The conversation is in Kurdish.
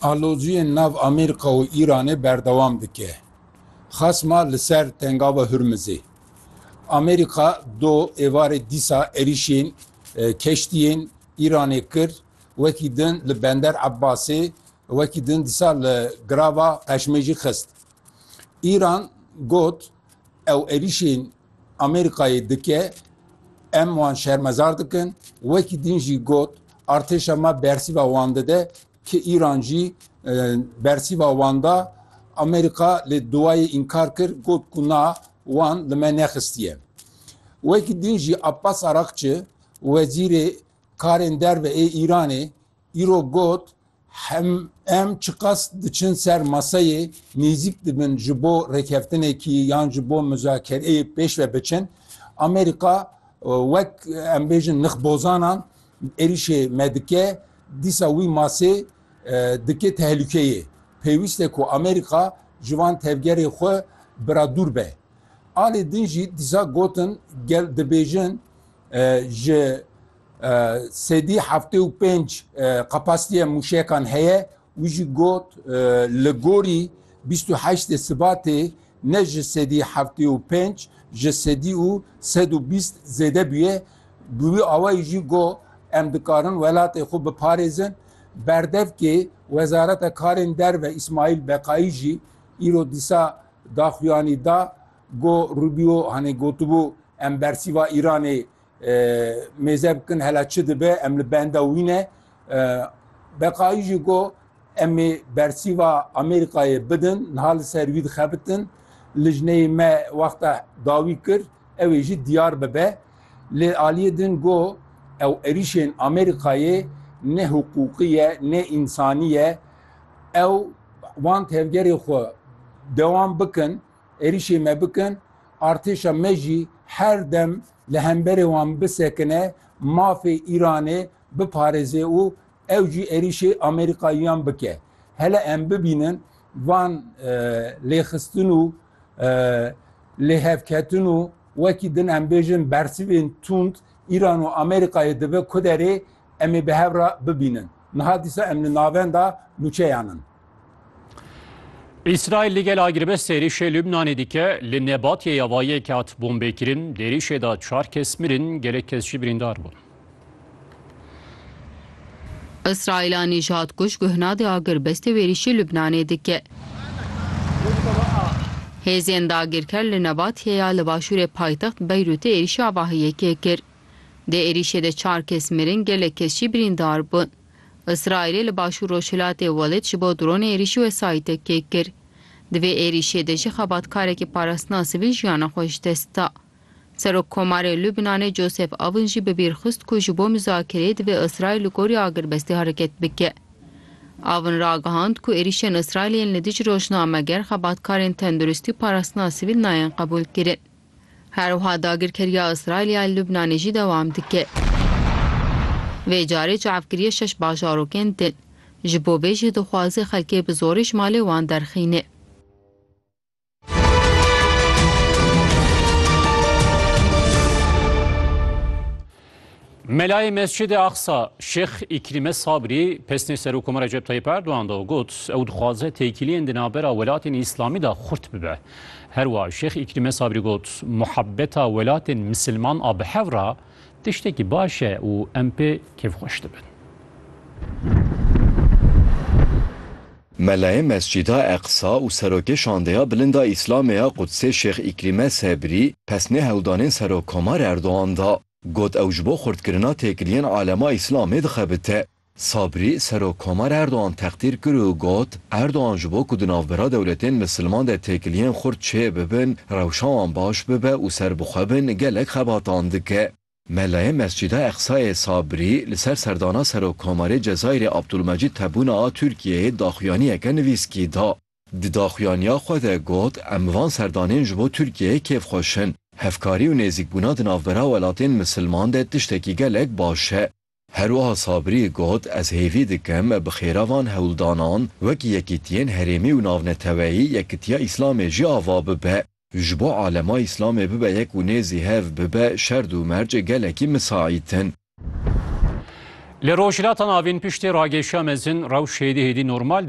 Aloziyên nav Amerîka û Îranê berdewam dike, xasma li ser Tengava Hurmizê. Amerîka do êvarê dîsa êrîşên keştiyên Îranê kir, wekî din li Bender Ebasê, wekî din dîsa li Girava Qeşmê jî xist. Îran got, Ew êrîşên Amerîkayê dike, em wan şermezar dikin, wekî din jî got, Artêşa me bersîva wan dide, Ki Îran jî bersîva wan da Amerîka lê duwayê înkar kir got ku na wan li me nexistiye. Wekî din jî Abbas Arakçi wezîrê karên derve ê Îranê îro got hem em çiqas diçin ser maseyê nêzîk dibin ji bo rêkeftinekî yan ji bo muzakereyê pêş ve biçin Amerîka wek em bêjin nixbozanan êrîşê me dike Dîsa wî masê dike tehlûkeyê. Pêwîst e ku Amerîka ji van tevgerên xwe bira dûr be. Alê din jî dîsa gotin gel dibêjin ji sedî heftê û pênc qepastiya mûşekan heye. Wî jî got li gorî bîst û heştê Sibatê ne ji sedî heftê û pênc ji sedî û sed û bîst zêde bûye, bi wî awayî jî got, Em dikarin welatê xwe biparêzin. Berdevkê Wezareta Karên Derve Îsmaîl Beqayî jî îro dîsa daxuyanî da, got, Rubio hanê gotibû em bersîva Îranê Mêze bikin hela çi dibe em li benda wî ne. Beqayî jî got em ê bersîva Amerîkayê bidin, niha li ser wî dixebitin. Lijneyê me wexta dawî kir ew ê jî diyar bibe. Lê aliyê din got ew êrîşên Amerîkayê ne hiqûqî ye, ne însanî ye. Ew wan tevgerê xwe dewam bikin. Êrîşê me bikin, artêşa me jî her dem li hemberê wan bisekine, mafê Îranê biparêze û ew jî êrîşê Amerîkayiyan bike. Hele em bibînin van lêxistin û lêhevketin û wekî din em bêjin bersivên tund Îran û Amerîkayê dibe ku derê em ê bi hev re bibînin. Niha dîsa em li navenda nûçeyan in. Îsraîl li gel agiribest êrîşê Lubnanê dike li Nebatiyê ya va yek hat bombêkirin, di êrîşê de çar kes mirin, gelek kes jî birîndar bûn. Îsraîl a nîjadkuj guhna di agirbestê wêrîşê Lubnanê dike. Hêzên dagirker li Nebatiyê ya li başûrê paytext Beyrûtê êrîşa vahiyekê kir. Di êrîşê de çar kes mirin, gelek kes jî birîndar bûn. Îsraîlê li başûr-rojhilatê Welid ji bo dronê êrîşî wesayîtek kêk kir. Di vê êrîşê de jî xebatkarekî parastina sivîl jiyana xwe ji dest da. Serokkomarê Lubnanê Joseph Aoun jî bi bîr xist ku ji bo muzakereyê divê Îsraîl li gorî agirbestê hereket bike. Aoun ragihand ku êrîşên Îsraîlê yên li dijî rojnameger, xebatkarên tenduristî û parastina sivîl nayên qebûlkirin. Her wiha dagirkeriya Îsraîlê ya Lubnanê jî dewam dike. Vê carê çavkiriyê şeş bajarokên din. Ji bo vê jî dixwaze xelkê bi zorî ji malê wan derxîne. Melayê Mescidê Aqsa Şêx Îkrîme Sabrî pesnê Serokoma Recep Tayyip Erdogan da û got, ew dixwaze têkiliyên di navbera welatên Îslamî da xurt bibe. Her wa Şêx Îkrîme Sabrî got, Muhebeta welatên misilman a bi hev ra tiştekî baş e û em pê kêfxweş dibin. Melayê Mescîda Eqsa û Serokê Şandeya Bilind a Îslamê ya Qudsê Şêx Îkrîme Sebrî pesnê hewldanên Serokkomar Erdogan da. Got ew ji bo xurtkirina têkiliyên alema Îslamê dixebite. Sabrî, Serokkomar Erdogan textîr kir û got, Erdogan ji bo ku di navbera dewletên misilman de têkiliyên xurt çêbibin, rewşa wan baş bibe û serbixwe bin gelek xebatan dike. Melayê Mescîda Eqsayê Sabrî li ser serdana Serokkomarê Cezayirê Abdulmecîd Tebûne a Tirkiyeyê daxuyaniyeke nivîskî da. Di daxuyaniya xwe de got, Em van serdanên ji bo Tirkiyeyê kêfxweş in. Hevkarî û nêzîkbûna di navbera welatên misilman de tiştekî gelek baş e. Herwiha Sabirî got, Ez hêvî dikim bi xêra van hewldanan wek yekîtiyên herêmî û navneteweyî yekitiya Îslamê jî ava bibe. Ji bo alema Îslamê bibe yek û nêzî hev bibe şerd û merc gelekî misaît in. Li Rojhilata Navîn piştî ragêşiya mezin rewş hêdî hêdî normal dibe.